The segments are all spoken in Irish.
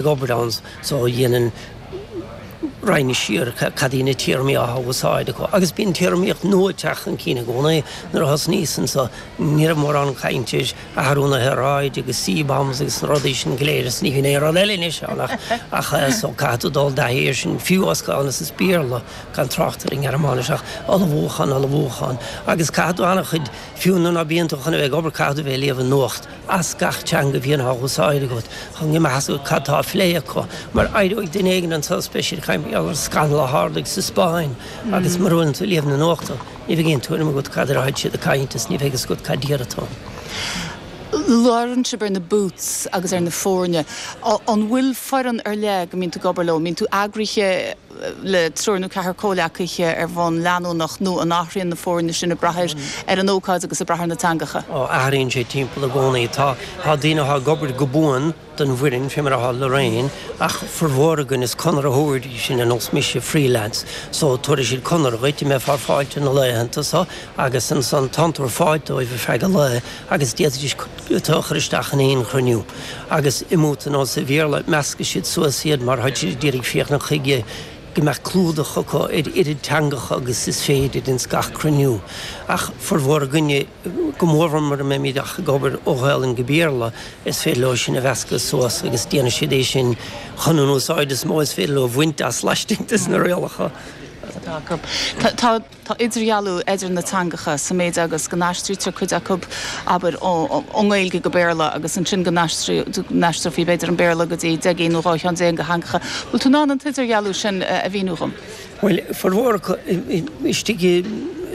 ag obair anso dhéanann roinnt siar cad iad na téarmaí atá á úsáid acu agus bíonn téarmaíocht nua ag teacht chun cinn i gcónaí. Nuair a thosnaíos anso ní raibh mórán cainte ar athrú na haeráide agus CBAMs agus na rudaí sin go léir is ní bhíonn aon rud eile anois ann ach ach so caithfidh tú dul i dtaithí ar sin fiú as Gaelainn is as Béarla gan trácht ar an nGearmáinis ach ullmhúchán ullmhúchán agus caithfidh tú an-chuid fiú nuair ná bíonn tú chun a bheith ag obair caithfidh tú a bheith ag léamh an nuacht as gach teanga a bhíonn á húsáid agat chun go mbeadh a fhios agat cad tá á phlé acu, mar éireoidh duine éigin suas is beidh sé ag caint mar gheall ar scannal a tharlaigh sa Spáinn agus mura bhfuileann tú ag léamh na nuachtán, ní bheidh aon tuairim agat cad air atáid siad ag caint is ní bheidh fhios agat cad air atá. labhrann sibh ar na booths agus ar na foirne, an bhfuil foireann ar leith go mbíonn tú ag obair leo, mbíonn tú eagraithe? le triúr nó ceathrar comhleacaithe ar bhonn leanúnach nó an athraíonn na foirne sin ag brath ar ar an ócáid agus ag brath ar na teangacha. Ó athraíonn sé timpeall i gcónaí. Tá tá daoine atá ag obair go buan don bhfoireann, fé mar a tharla roinn, ach formhór againn is conraitheoirí sinn ar nós mise, freelance, so tabharfaidh siad conradh dhuit go mbeifeá ar fáilt na laethanta so agus ansan tá'n tú ar fáilt dóibh ar feadh an lae, agus d'fhéadfaidís tú a chur isteach in aon chruinniú, agus i mbooth ar nós an Bhéarla, meascfaidh siad suas iad mar táid siad d'iarraidh féachaint chuige go mbeadh clúdach acu ar oiread teangacha agus is féidir ins gach cruinniú, ach formhór againne, go mórmhór mura mbeimid ach ag obair ó Ghaolainn go Béarla, is féidir leo sinn a mheascadh suas agus déanfaidh siad é sin chun an úsáid is mó is féidir leo a bhaint as laistigh des na rialacha atá acu. Tá. Tá idirdhealú idir na teangacha sa méid agus go n-aistrítear cuid acu, abair, ón nGaeilge go Béarla agus ansin go n-aistreofaí, b'fhéidir, an Béarla go dtí deich gcinn nó dhá cheann déag de theangacha. Bhfuil tú in ann an t-idirdhealú sin a mhíniú dhom? Bhuel, formhór istigh,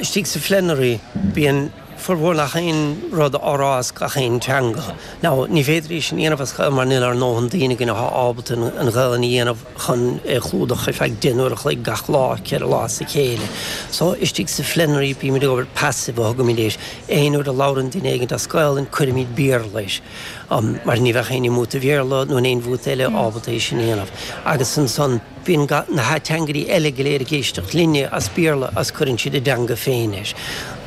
istigh sa phlenary, bíonn formhór nach aon rud á rá as gach aon teanga. Now, ní féidir é sin a dhéanamh as Gaelainn mar níl ár ndóthain daoine againn atá ábalta an Ghaelainn a dhéanamh. chun é chlúdach ar feadh deich n-uair a chloig gach lá, ceithre lá as a chéile. So, istigh sa phlenary, bímid ag obair passive a thugaimid air, aon uair a labhrann duine éigin as Gaolainn, cuirimid Béarla air, mar ní bheadh éinne i mbooth an Bhéarla, nó in aon bhooth eile, ábalta é sin a dhéanamh. Agus ansan, bíonn ga, na hateangairí eile go léir ag éisteacht linne as Béarla, agus cuireann siad a dteanga féin air.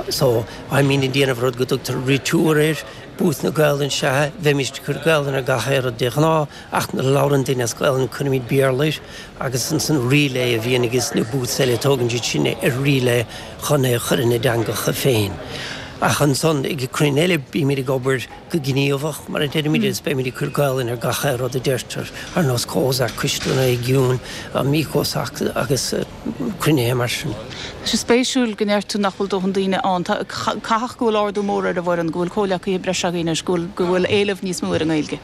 So, bímid, ag déanamh rud go dtugtar retour air, booth na Gaolainn, is ea, bheimist ag cur Gaolainn ar gach aon rud de ghnáth, Ach nuair a labhrann duine as Gaelainn cuirimid Béarla air agus ansan relay a bhíonn aiges na booths eile, tógann siad sin é ar relay chun é a chur ina dteangacha féin. Ach ansan ag cruinnithe eile bímid ag obair go gníomhach mar a deirimid agus beimid ag cur Gaelainn ar gach aon rud a deirtear, ar nós Cozar, Coiste na Réigiún, Amicos agus cruinnithe mar sin. Tá sé spéisiúil go ndeir tú nach bhfuil dóthain daoine ann. Tá, caithfidh go bhfuil ardú mór ar an bhfoireann, go bhfuil comhleacaithe breise agaibh anois, go bhfuil, go bhfuil éileamh níos mó ar an nGaeilge.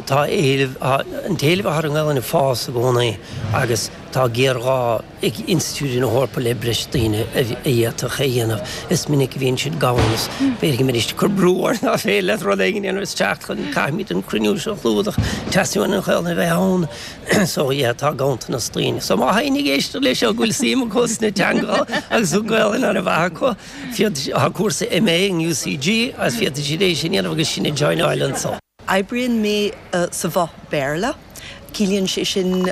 Tá éileamh, an t-éileamh atá ar an nGaelainn ag fás i gcónaí agus tá géarghá ag institiúidí na hEorpa le breis daoine a d'fhéadfadh é a dhéanamh. Is minic a bhíonn siad gann agus féadfaidh mé cur brú orthu ná féin le rud éigin a dhéanamh is teacht chun Caithfimid an cruinniú seo a chlúdach, teastaíonn uainn an Ghaelainn a bheith ann so yeah tá ganntanas daoine. So má tá éinne ag éisteacht leis seo go bhfuil suim acu sna teangacha agus an Ghaelainn an-mhaith acu, féadfaidh, tá cúrsa MA in UCG agus féadfaidh siad é sin a dhéanamh agus sinn a joináil anseo. Oibríonn mé sa bhoth Béarla. Ciallaíonn sé sin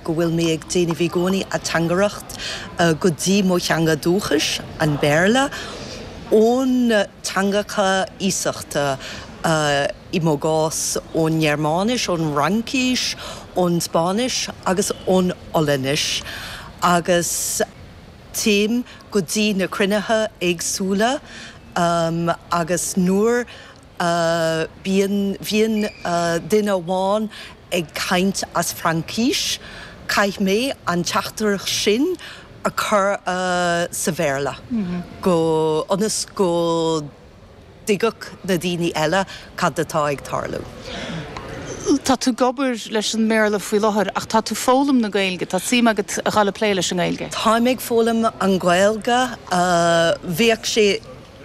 go bhfuil mé ag déanamh i gcónaí ateangaireacht go dtí mo theanga dúchais, an Béarla, ón teangacha iasachta, i mo chás, ón nGearmáinis, ón bhFraincis, ón Spáinnis agus ón Ollainnis, agus téim go dtí na cruinnithe éagsúla agus nuair bíonn bhíonn duine amháin ag caint as Fraincis, caithfidh mé an teachtaireacht sin a chur sa Bhéarla go ionas go dtuigfeadh na daoine eile cad atá ag tarlú. Tá tú ag obair leis an mBéarla faoi láthair ach tá tú foghlaim na Gaeilge, tá suim agat a dhul ag plé leis an nGaeilge? Táim ag foghlaim an Gaeilge, bheadh sé.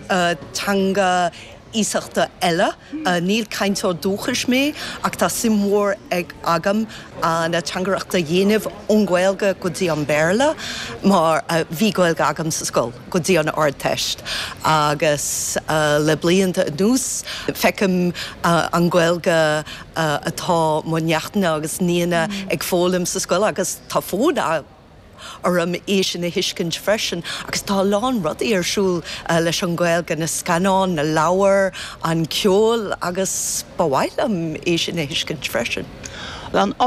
teanga iasachta eile. Níl cainteoir dúchais mé ach tá suim mhór agam an ateangaireacht a dhéanamh ón Ghaeilge go dtí an Béarla mar bhí Gaeilge agam sa scoil go dtí an Ardteist agus le blianta anuas feicim an Gaeilge atá mo neachtanna agus nianna ag foghlaim sa scoil agus tá fonn orm é sin a thuiscint freisin agus tá a lán rudaí ar siúl leis an Gaeilge, na scannáin, na leabhair, an ceol agus ba mhaith liom é sin a thuiscint freisin.